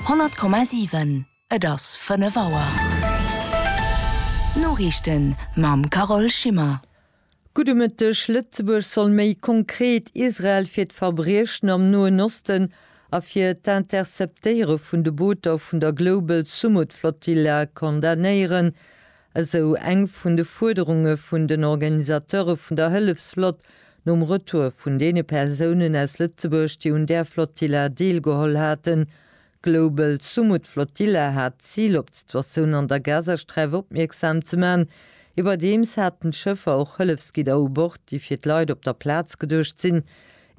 100,7 Et ass 5 Auer. D'Noriichten mam Carole Schimmer. Gudde Mëtteg, Lëtzebuerg soll méi konkret Israel fir d'Verbriechen am Noen Osten a fir d'Interceptéiere vun de Booter vun der Global Sumud Flotilla condamnéieren. Esou eng vun de Fuerderunge vun den Organisateure vun der Hëllefsflott nom Retour vun deene Persounen aus Lëtzebuerg, déi un där Flotilla deelgeholl haten. D'Global Sumud Flotilla hat d'Zil, op d'Situatioun an der Gazasträif opmierksam ze man. Iwwerdeems haten d'Schëffer och Hëllefsgidder u Bord, déi fir d'Leit op der Plaz geduecht sinn.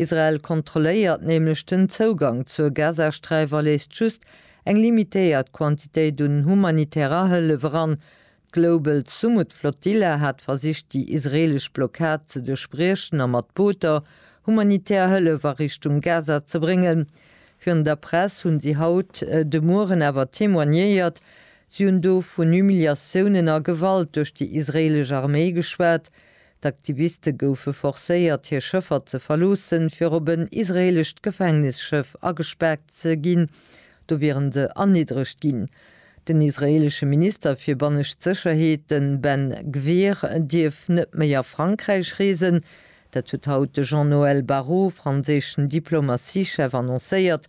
Israel kontrolléiert nämlech den Zougang zur Gazasträif a léisst just Eng limitéiert Quantitéit un humanitärer Hëllef eran. D'Global Sumud Flotilla hat versicht déi israelesch Blockad ze duerchbriechen a mat Booter humanitär Hëllef a Richtung Gaza ze bréngen. Virun der Press hunn si haut de Mueren awer témoignéiert. Si hunn do vun Humiliatiounen a Gewalt duerch déi israelesch Arméi geschwat, D'Aktiviste goufe forcéiert, hir Schëffer ze verloossen, fir op en israeelescht Gefängnisschëff agespaart ze ginn. Do wieren se erniddregt ginn. Den israeelesche Minister fir bannescht Sécherheet, de Ben Gvir, dierf net méi a Frankräich reesen. Dat huet haut de Jean-Noël Barrot, franséischen Diplomatiechef, annoncéiert.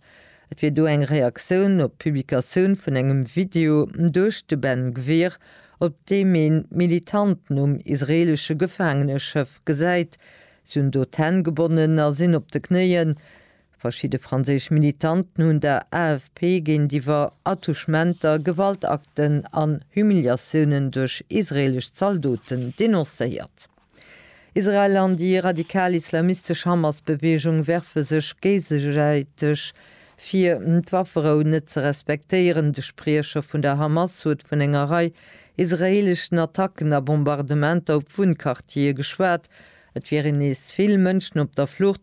Et wier do eng Reaktioun op d'Publikatioun vun engem Video duerch de Ben Gvir, op deem een d'Militanten um israeelesche Gefaangeneschëff gesäit. Si hunn do d'Hänn gebonnen a sinn op de Knéien. Verschidde franséisch Militanten hunn der AFP géintiwwer Attouchementer, Gewaltakten an Humiliatiounen duerch israeelesch Zaldoten denoncéiert. Israel an déi radikal islamistesch Hamas-Beweegung werfe sech géigesäiteg vir, d'Wafferou net ze respektéieren. De Spriecher vun der Hamas huet vun enger Rei israeeleschen Attacken a Bombardementer op Wunnquartiere geschwat. Et wieren nees vill Mënschen op der Flucht.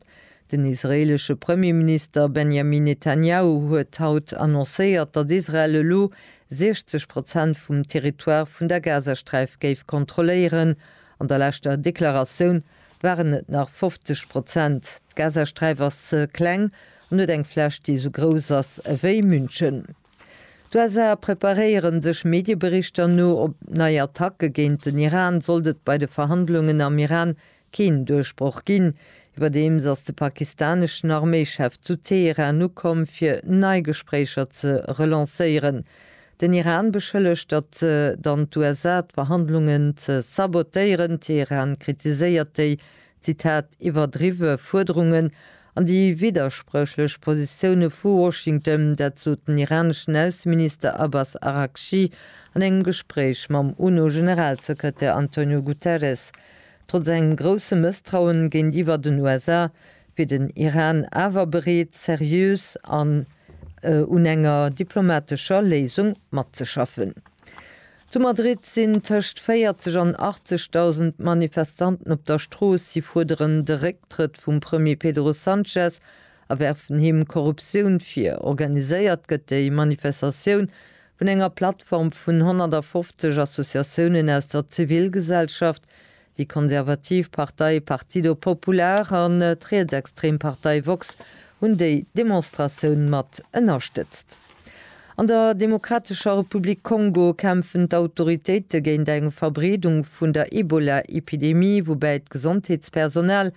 Den israeelesche Premierminister Benjamin Netanjahu huet haut annoncéiert, datt Israel elo 60 Prozent vum Territoire vun der Gazasträif géif kontrolléieren. An der leschter Deklaratioun waren et nach 50 Prozent. D'Gazasträif ass ze kleng an huet eng Fläch, déi esou grouss ass ewéi München. D'USA preparéieren sech. Medieberichter no op nei Attacke géint den Iran. Sollt et bei de Verhandlungen am Iran keen Duerchbroch ginn. Iwwerdeems ass de pakistaneschen Arméichef zu Teheran ukomm, fir nei Gespréicher ze relancéieren. Den Iran beschëllegt, datt dann d'USA d'Verhandlungen ze sabotéieren. Teheran kritiséiert déi, Zitat, iwwerdriwwe Fuerderungen an déi widderspréchlech Positioune vu Washington. Dat sot den iraneschen Ausseminister Abbas Araghchi an engem Gespréich mam UNO-Generalsekretär Antonio Guterres. Trotz engem grousse Mësstrauen géintiwwer den USA wier den Iran awer bereet, seriös an un enger diplomatescher Léisung matzeschaffen. Zu Madrid sinn tëscht 40 an 80.000 Manifestanten op der Strooss. Si fuerderen de Récktrëtt vum Premier Pedro Sanchez a werfen him Korruptioun vir. Organiséiert gëtt déi Manifestatioun vun enger Plattform vun 150 Associatiounen aus der Zivilgesellschaft, Déi konservativ Partei Partido Popular an d'rietsextrem Partei Vox hunn déi Demonstratioun mat ënnerstëtzt. An der Demokratescher Republik Kongo kämpfen d'Autoritéite géint eng Verbreedung vun der Ebola-Epidemie, woubäi d'Gesondheetspersonal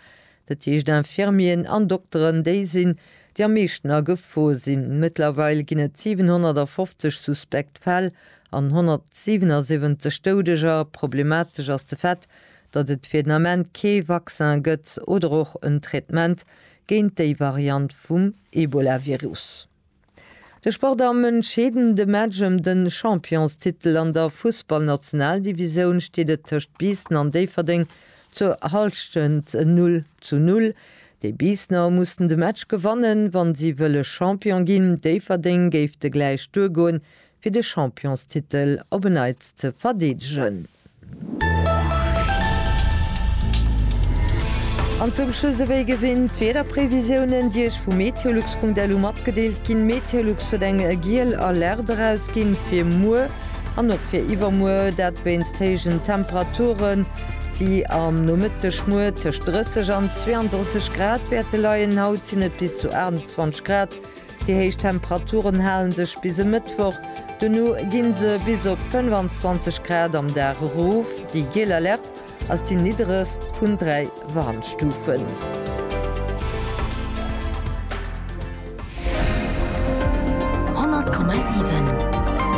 Dat heescht Infirmieren an Dokteren, déi sinn, déi am meeschten agefor sinn. Mëttlerweil ginn et 750 suspekt Fäll an 177 Doudeger. Problematesch ass de Fait, datt et fir den Ament kee Vaccin gëtt oder och en Traitement géint déi Variant vum Ebolavirus. De Sport am entscheedende Match ëm de Championstitel an der Fussballnationaldivisoun steet et tëscht Biissen an Déifferdeng zur Hallschent Null zu Null. Déi Biissener mussen de Match gewannen, wa si wëlle Champion ginn. Déifferdeng géif de Gläich duergoen, fir de Championstitel op en Neits ze verdeedegen. An zum Schluss ewéi gewinnt d'Wiederprevisiounen, déi Iech vu meteolux.lu matgedeelt ginn. Meteolux huet eng giel Alerte erausginn fir muer an och fir iwwermuer, dat wéinst héijen Temperaturen, déi am Nomëtteg muer tëscht 30 an 32 Grad wäerte leien. Haut sinn et bis zu 28 Grad. Déi héich Temperaturen halen sech bis e Mëttwoch, dono ginn se bis op 25 Grad am Dag erof. Déi giel Alerte ass déi nidderegst vun 3 Warnstufen.